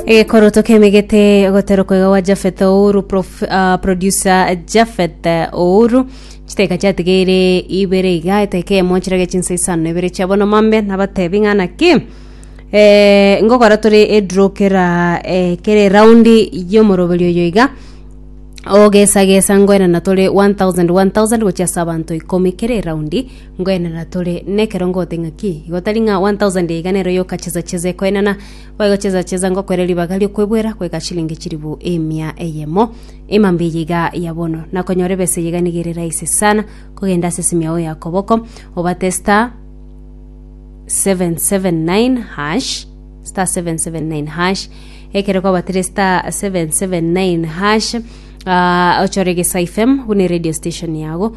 egekoroto kemegete ogoterokwa iga gwa jafeth ouru prof- ah, producer jafeth ouru chiteka chiatigeire ibere iga eteka emo chirage chinsa isano na ibere chiabo nomambe nabatebi ng'a naki eh, ngokora tore edraw kera eh, kera eraundi yomoroberi oyo iga ogesagesa ngoenana tore 1000 1000 gochia ase abanto ikomi kera eraundi Ngoenana tore nekerongo gote ng'aki? Igo tari ng'a 1,000 iga nero yokacheza-cheza ekoenana, gwaegocheza-cheza ngokwere ribaga ri'okwebwera goika chilingi chilifu emia eyemo. Emambe eye iga ya bono, na konyora ebesa eye iga nigo ere rahisi sana, kogenda ase esimu yao ya koboko, obate star 779 hash, star 779 hash, ekero kwabatire star 779 hash, ah, ochore gesa FM buna eradio station yago,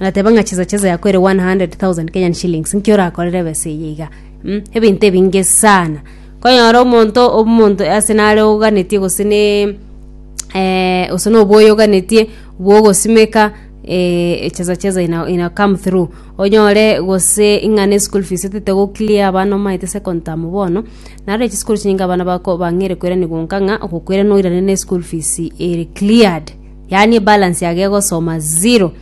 Agateba ng'a chesa chesa yako ere 100,000 Kenyan shillings nki orakorere ebesa eye iga mm, ebinto ebinge sana konyora omonto omonto ase nare oganetie gose ne eh, gose na oboyo oganetie bwogosimeka eh, chesa chesa ina, ina come through onyore gose ng'a ne school fees etete go clear abana omaete second term bono naro echi school chinyinge abana bako bang'eire koiranigwa nka ng'a ogokoirana oirane ne school fees ere cleared. yaani ebalance yago egosoma zero.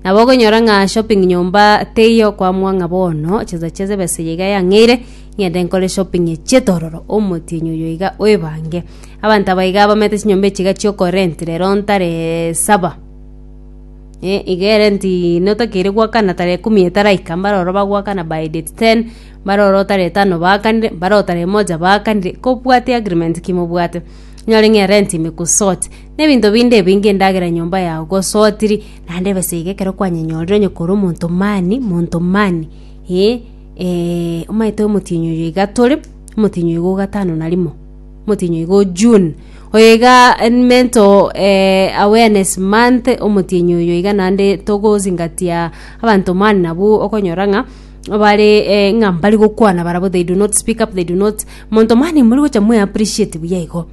Nabo okonyora ng'a shopping nyomba teiyo kwamua ng'a bono chesa chesa ebesa eye iga yang'eire ng'ende nkore shopping chi'etororo omotienyi oyo iga oebange. Abanto aba iga bamenete chinyomba echi iga chi'oko rent rero ntare saba eh iga erenti notakeire goakana tara ekumi etaraika mbare ororo bagoakana by date ten, mbare ororo tara etano baakanire, mbare ororo tara emoja baakanire, kobwate agreement ki mobwate, onyore ng'a erenti ime ku sort. Nebinto binde ebi ngindagera enyomba yao gosotiri, naende besa iga ekero kwanyenyorire onye kore omonto mani, monto mani, eh, eh, omanyete omotienyi oyo iga tore, omotienyi oyo iga o gatano na rimo, omotienyi oyo iga o June, oyo iga mental awareness month, omotienyi oyo iga naende togosingatia abanto mani nabwo okonyora ng'a bare eh ng'a mbari gokwana barabwo they do not speak up, they do not monto mani mori gocha mwe appreciate buya igo.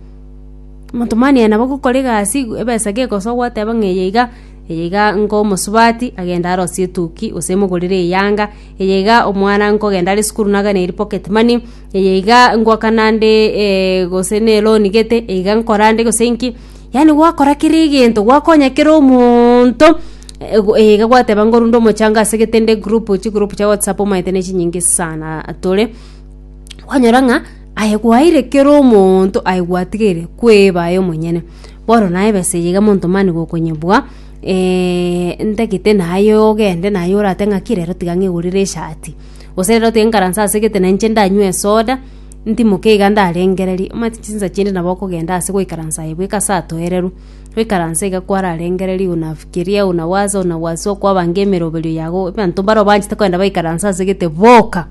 Omotomani aye nabo gokora egasi igw- ebesa gegosogwa oteba ng'a eye iga, eye iga nko omosubati, agende arosie etuki gose emogorere eyanga, eye iga omwana nkogenda are esukuru nagane eri pocket money, eye iga ngwakana nde gose ne eloni gete, eye iga nkora nde gose nki, yaani gwakora kera egento, gwakonya kera omonto, ego eye iga gwateba ngorwa nde omochando asegete nde group chigroup chia whatsapp omanyete ne chinyinge saana tore. kwanyora ng'a aye gwaeire kera omonto aye gwatigeire kweba aye omonyene bono naye ebesa eye iga monto mani gokonyebwa eh, ntagete naye ogende naye orate ng'aki rero tiga ng'egorere eshati gose rero tiga nkaranse ase egete na inche ndanywe esoda ntimoke iga ndarengererie omanyete chinsa chinde nabo okogenda ase goikaransa aye bweka ase atoereru goikaransa iga kwararengereria ona fikiria ona waza ona wazua kwabange emeroberio yago abanto mbaro obanchete kogenda baikaranse ase egete boka.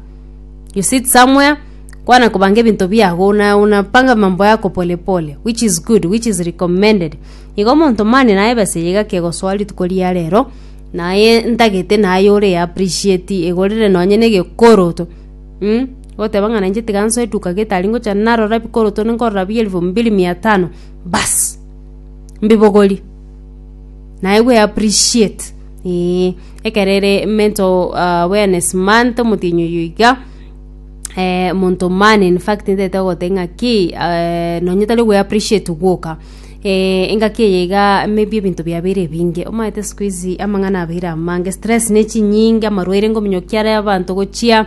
You sit somewhere, kwana kobanga ebinto biago, una, una panga mambo yako pole pole, which is good, which is recommended. Igo omonto mani naye besa eye gaki egosoa rituko ria rero, naye ntagete naye ore ya appreciate egorere nonye ne egekoroto, mm, goteba ng'a nainche tiga nsoe duka getari ngocha narora ebikoroto ninkorora bia elfu mbili mia tano, baas, mbibogorie. Naye we appreciate. Ee, ekero ere mental awareness month omotienyi oyo iga eh, monto man in fact ntaete gogoteba ng'a ki eh, nonye tari gwe appreciate gwoka eh, engaki eye iga maybe ebinto biabeire ebinge omanyete siku hizi amang'ana abeire amange stress ne chinyinge amarwaire ngominyo ki are abanto gochia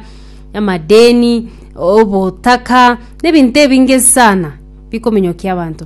amadeni obotaka na ebinto ebinge sana bikominyokia abanto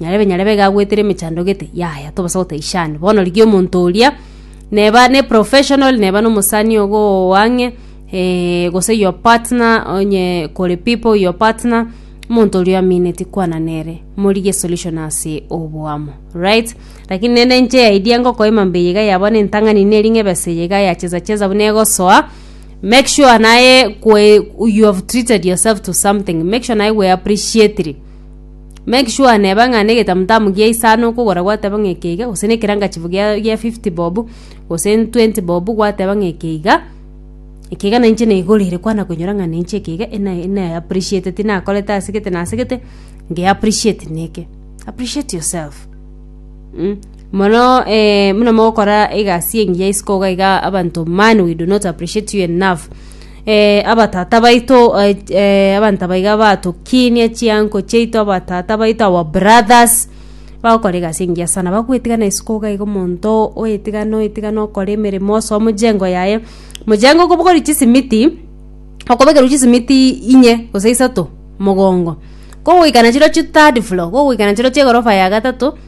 Nyarebe nyarebe iga agwetire emechando gete, yaya tobasa gotaishana. Bono rigia omonto oria, neba ne professional, neba na omosani ogo oo ang'e, eh, gose your partner, onye kore people, your partner, omonto oria oamineti kwana nere, morigie esolution ase oboamo, right? Lakini naende inche eidea ngokoima mbuya iga ya bono entang'ani neri ng'a ebesa eye iga yachesa chesa buna egosoa, make sure naye kwe you have treated yourself to something, make sure naye gwe appreciatiri. Make sure neba ng'a na egetamutamu gia isano okogora gwateba ng'a eke iga gose na ekerangachifu gia gia fifty bob gose twenty bob gwateba ng'a eke iga, eke iga nainche naigorire kwana koinyora ng'a nainche eke iga ena ena e appreciate tinakorete ase gete na ase gete nge appreciate na eke. Appreciate yourself mh mono muna mogokora egasi engiya isiko iga abanto man we do not appreciate you enough. abatata baito abanto aba iga batokinie chiango chiaito abatata baito our brothers bagokora egasi engiya sana bagwetigana isiko iga iga omonto oetigane oetigane okore emeremo ase omojengo yaye mojengo kobogorwa chisimiti okobekerwa chisimiti inye gose isato mogongo kogoikana chirochio third floor kogoikana chirochio egorofa ya gatato.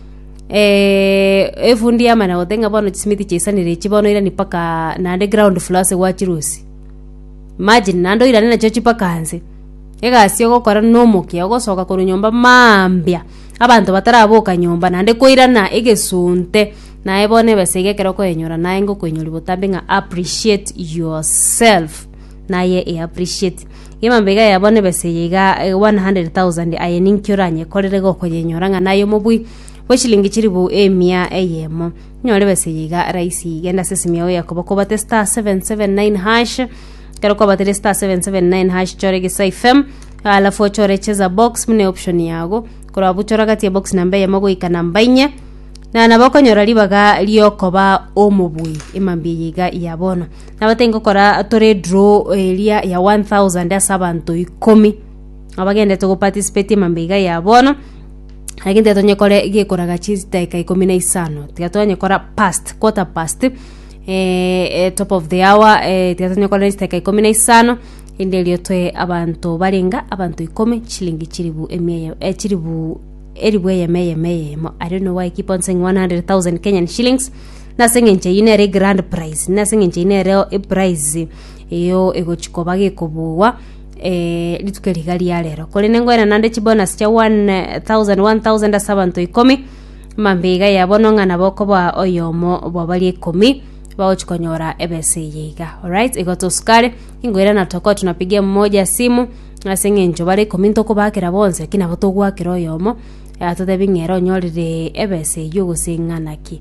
Eh, efundi yamana gote ng'a bono chisimiti chaisanire echi bono irani mpaka naende ground floor ase gwa chirusi imagine naende oirane nachio chie mpaka nse egasi ogokora nomokia ogosoka korwa nyomba maambia abanto bataraboka nyomba naende koirana egesunte naye bono ebesa iga ekero okoenyora naye ngokoenyori botambe ng'a appreciate yourself. naye e appreciate gima mbiga ya bono ebese eye iga eh, 100,000 aye ninki oranyekorere gokonyenyora ng'a naye omobui bwe shilingi chiribu emia eyemo nyore ebese eye iga raisi genda ase esimi yao yakobo kobate star 779 hash kero kwabatire star 779 hash chore gisa fm alafu ochore cheza box mune option yago korwa buchora gati ya box namba eyemo goika namba inye na nabo okonyora ribaga riokoba omobui emambia eye iga ya bono Nabo tingokora tore edraw eria ya one thousand ase abanto ikomi abagenderete goparticipate emambe iga ya bono lakini tiga tonyekore gekoraga chidaeka ikomi na isano tiga twanyekora past quarter past eh, eh, top of the hour eh, tiga tonyekore chidaeka ikomi na isano erinde erio toe abanto barenga abanto ikomi chilingi chilifu emia eye eh, chilifu elifu eyemo eyemo eyemo i don't know why I keep on saying 100,000 Kenyan shillings Nase engencho eyio nere egrand prize, nase engencho eyio nere eprize eyo egochi koba gekobugwa eh, rituko riga ria rero korende ngoena nande chibonus chia 1000 1000 ase abanto ikomi mambe iga ya bono ng'a nabo okoba oyomo bwabaria ikomi bagochi konyora ebesa eye iga alright igo tosukare ingoira na tokoa tunapigia mmoja simu ase eng'encho bare ikomi ntokobakera bonsi lakini nabo togwakera oyomo eh, atotebi ng'a ere onyorire ebesa eyio gose ng'a naki